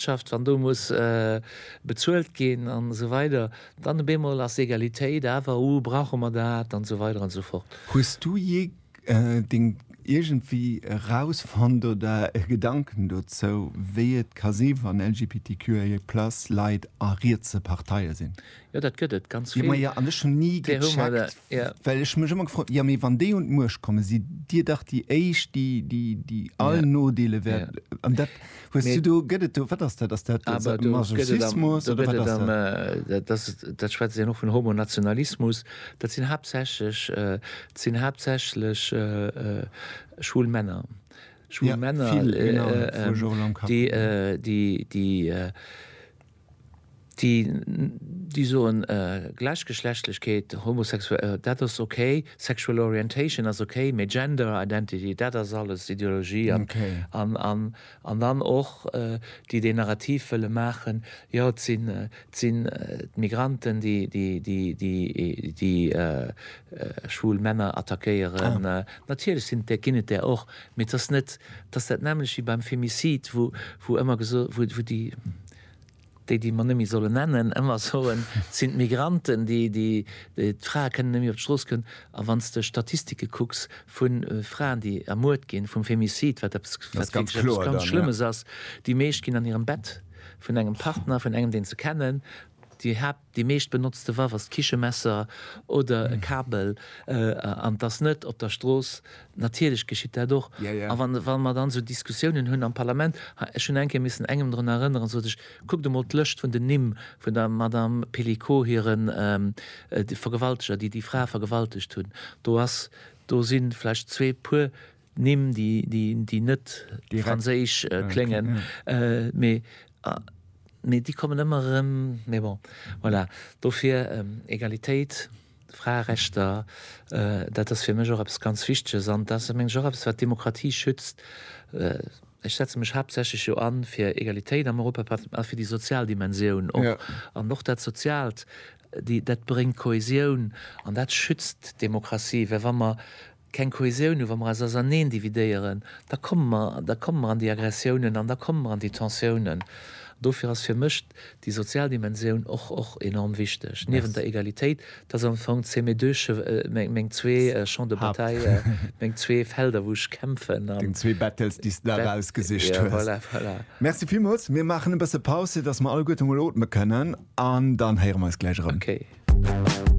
Wirtschaft, wann do muss bezuelt ginn an esou weider, dann op eemol ass Egalitéit awer, oh brauche mer dat an esou weider an esou fort. Hues du jee deng iergendwéi erausfonnt oder e Gedanken dozou, wéi et ka si wann LGBTQIA+ Leit a rietse Parteie sinn? Jo, dat gëtt et ganz vill. Jo, ma jo, an ech hunn ni gecheckt, well ech mech ëmmer gefrot hunn, jo, mee wann déi un d'Muecht kommen, sidd Dir dach déi éischt, déi, déi all Nodeele wäert. An dat hues du do, gëtt et do, wat ass dat, ass dat Masochismus oder wat ass dat? Dat, dat schwätzt een och vun Homonationalismus. Dat sinn haaptsächlech, dat sinn haaptsächlech schwul Männer, schwul Männer, déi, déi, déi, déi déi soen Gläichgeschlechtlechkeet, Homosexuell, dat ass ok, Sexual Orientation ass ok, mee Gender Identity, dat ass alles Ideologie an an an an dann och déi deen Narrativ wëlle maachen, jo et sinn et sinn d'Migranten déi déi déi déi déi schwul Männer attackéieren. Natierlech sinn et där ginn et där och, Mee et ass net, et ass dat nämmlecht wéi beim Femicide, wou, wou ëmmer geso, wou, wou déi, déi, déi mer net méi solle nennen, ëmmer soen, et sinn d'Migranten, déi, déi, déi, d'Frae kënnen net méi op d'Strooss goen. A wann s de Statistike kucks vu Fraen, déi ermuert ginn, vum Femicide, wat eppes, wat wierklech eppes ganz Schlëmmes ass, déi meescht ginn an hirem Bett vun engem Partner, vun engem, deen se kennen, déi Haapt. Déi meescht benotzte Waff ass d'Kichemesser oder e Kabel, an et ass net op der Strooss. Natierlech geschitt dat och. A wa mer dann esou Diskussiounen hunn am Parlament, ech hunn eng Kéier missen engem drun erënneren, sot ech, kuckt emol d'Lëscht vun den Nimm vun der Madame Pelicot hire Vergewalteger, déi déi Fra vergewaltegt hunn, do si vläicht zwee puer Nimm, déi net franséisch kléngen, mee déi kommen ëmmer erëm. Mee bon, voilà. Dofir Egalitéit, Fraerechter, dat ass fir mech och eppes ganz Wichteges. An dat ass, meng ech, och eppes, wat d'Demokratie schützt. Ech setze mech haaptsächlech jo an fir Egalitéit am Europaparlament a fir déi sozial Dimensioun och. An och dat Soziaalt, dat bréngt Kohäsioun an dat schützt d'Demokratie. Well wa mer keng Kohäsioun hu, wa mer eis auserneen dividéieren, da komme mer, da komme mer an déi Aggressiounen an da komme mer an déi Tensiounen. Dofir ass fir mech déi sozial Dimensioun och, och enorm wichteg, niewent der Egalitéit. Dat ass am Fong, c'est mes deux che, meng zwee Champs de bataille, meng zwee Felder, wou ech kämpfen an. Deng zwee Battles, déi s de der ausgesicht hues. Voilà, voilà. Merci villmools. Mir maachen e bësse Paus, fir dass mer alleguerte mol otme kënnen an dann héiere mer eis gläich erëm. Okay.